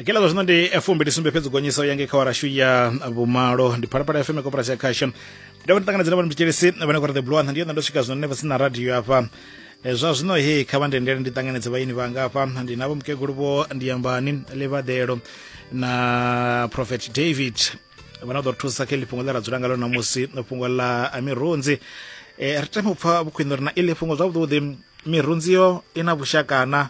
kila zwa zwino ndi fumbi ndi sumbe fhedzi gonyiso yange kha warashu ya vhumalo ndi phalaphala fm koporasi ya khasho ndi dovha ndi ṱanganedza na vhani mtshelesi vhane kora the blue antha ndi yona ndo swika zwino nne vhasina radio afha Eh, zwa zwino he kha vha ndendele ndi ṱanganedze vhaini vhanga afha ndi navho mukegulu vho ndiyambani levadelo na prophet david vhana ḓo ri thusa kha iḽi fhungo ḽe ra dzula ngalo namusi fhungo ḽa a mirunzi eh, ri tame u pfa vhukhwini uri na iḽi fhungo zwavhuḓi mirunzi yo i na vhushakana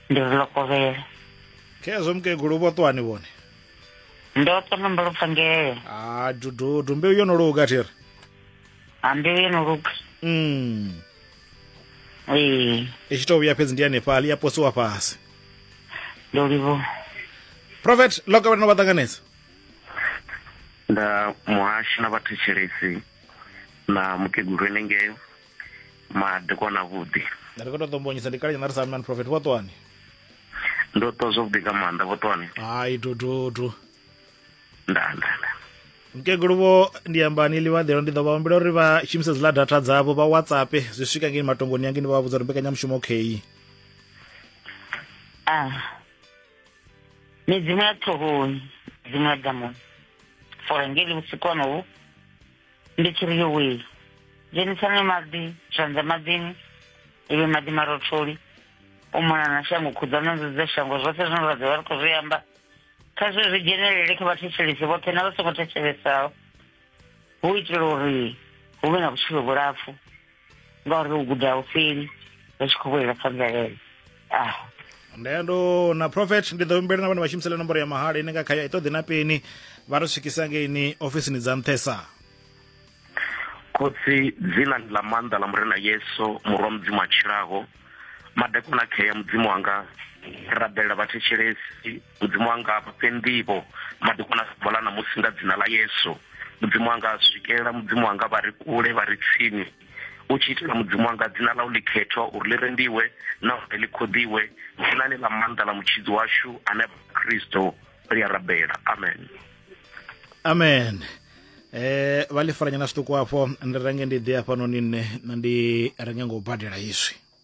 ndi vhulokovhele khezwo mukegulu vho ṱwani vhone ndo ṱona mbalopfangele a dududu mbeu yo no luga thiri a mbeu yo no luga mm. ee i tshi tou vhuya fhedzi ndi hanefhaḽi ya posiwa fhasi ndo livhuwa prophet loka vhana vha ṱanganedza nda muhasho na vhathetshelesi na mukegulu enengeo madekwana vhuḓi ri khou tou ṱombonyisa ndi kale nyana ri sa amnan prophet vho ṱwani ndo ṱwa zwavhuḓi nga maanḓa vho ṱwani hai tututu nda nda nda mkegulu vho ndi ambani ḽivhaḓelo ndi ḓo vha humbela uri vha shumise dziḽa data dzavho vha whatsapp zwi swika ngeni matongoni yange ndi vha vhudza uri mbekanyamushumo kheyi a ah. midzimu ya ṱhohoni midzimu ya damoni fore ngeli vhusiku honohu ndi tshi ri yowee dzhenisani maḓi zwanḓa maḓini iwe maḓi marotholi u mona na shango khuḓana nzudza shango zwoṱhe zwine ra ḓovha ri khou zwi amba kha zwe zwi dzhenelele kha vhathetshelisi vhoṱhe na vha songo thetshelesao hu itela uri hu vhe na vhutshilo vhulapfu nga uri u guda u fheli ri tshi khou vhulela kha mvelele ah ndendo na prophet ndi ḓo humbela na vhane vha shumisela nomboro ya mahala ine nga khayo i ṱoḓi na peni vha ri swikisa ngeini ofisini dza nṱhesa khotsi dzina ndi ḽa maanḓa ḽa murena yesu murwa mudzimu a tshilaho madekwana khea mudzimu wanga rabelela vhathetshelesi mudzimu wanga vha fhe nḓivho madekwana sa vhala ṋamusi nga dzina ḽa yesu mudzimu wanga swikela mudzimu wanga vha ri kule vha ri tsini u tshi itela mudzimu wanga dzina ḽa u likhethwa uri ḽi rendiwe na uri ḽi khoḓiwe dzina-ni ḽa maanḓa ḽa mutshidzi washu ane kristo ri a rabela amen amen eh vha ḽi faranyana zwiṱuku afho ndi renge ndi ḓe hafhanoni nṋe na ndi renge ngo badela izwi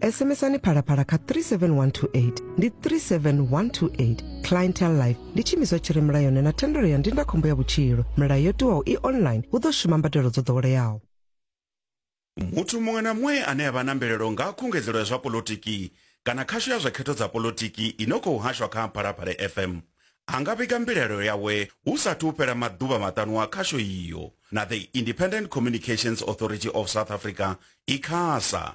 sms-ani phalaphala kha 37128 ndi 37128 clientel life ndi tshiimiswa tshi re mulayoni na thendelo ya ndindakhombo ya vhutshilo milayo yo tiwaho i online hu ḓo shuma mbadelo dzo ḓoweleaho muthu muṅwe na muṅwe ane a vha na mvelelo nga ha khungedzelo ya zwa polotiki kana khasho ya zwa khetho dza polotiki i no khou hashwa kha phalaphala fm a nga vhiga mbilaelo yawe hu sathu u fhela maḓuvha maṱanu a khasho iyo na the independent communications authority of south africa icasa